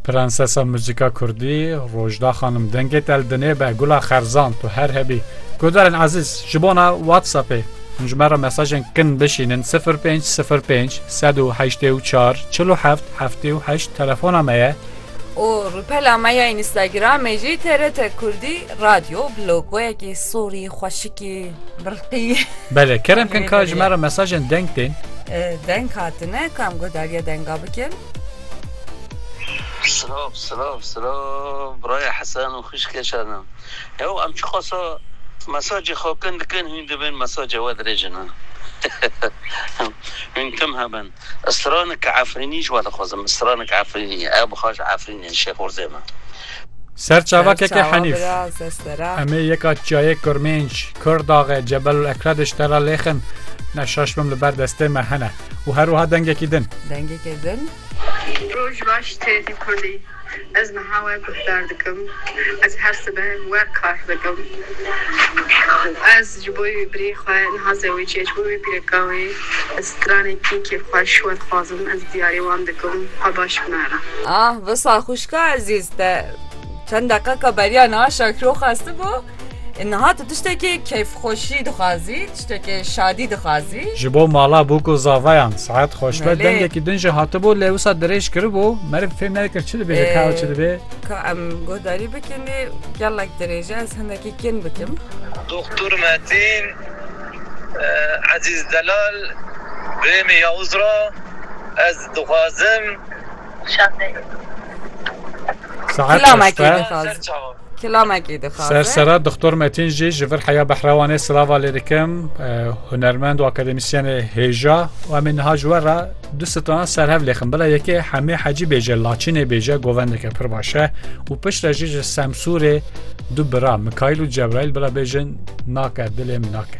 Prensesa muzîka kurdî Rojda xanim dengê te li dinê be gula xerzan tu her hebî. Guhdarên ezîz ji bona WhatsAppê hûn ji me re mesajên kin bişînin 0505 184 47 78 telefona me ye. û rûpela me ya Înîstagramê jî TRT Kurdî Radyo bi logoyekî sorî xweşikî birqî. Bele kerem kin ka ji me re mesajên deng tên. Deng hatine kam guhdariya denga bikin. Silav silav silav biraya Hesen û xwîşkê Şadan. Ew em çiqasa mesajê xwe kin dikin hûn dibin mesajê we dirêjin. Hûn tim hebin. Stranik Efrînî ji we dixwazim. Stranik Efrînî ye. Ew bixwe ji Efrînê, Şêxorzê me. Ser çava keke Henîf. Em ê yeka çiyayê Kirmênc, Kirdaxe, Cebel û Ekrediş te re lêxin. Ne şaş bim li ber destê me hene. Û her wiha dengekî din. Dengekê din. Roj baş têrî kurdî. Ez niha we guhdar dikim. Ez her sibeh we kar dikim û ez ji bo wî birê xwe niha zewicê ji bo wî pîreka wê bi stranekî kêfxweş we dixwazim ez diyarê wan dikim xwe baş binare. Ah, wisa xwişka ezîz te çend deqeka beriya niha şakiro xwestibû. Niha tu tiştekê keyfxweşî dixwazî, tiştekê şadî dixwazî. Ji bo mala bûk û zavayan saet xweş be. Dengekî din jî hatibû lê wisa dirêj kiribû. Meriv fêm nedikir çi dibêje ka ew çi dibê. Ka em guhdarî bikin lê gelek dirêje ez hindekî kêm bikim. Doxtur Metîn, Ezîz Delal, Birêmî Yawûz ra ez dixwazim. Şadê. Saet xweş be. Kilamekî dixaze. Sersera Doktor Metin jî ji vir heya Behrewanê silava lê dikim hunermend û akademîsyenê hêja û em ê niha ji we re du sitana serhev lêxin bila yekê Hemê Hecî bêje Laçînê bêje govendeke pir baş e û pişt re jî ji Semsûrê du bira Mikaîl û Cebraîl bila bêjin nake dilê min nake.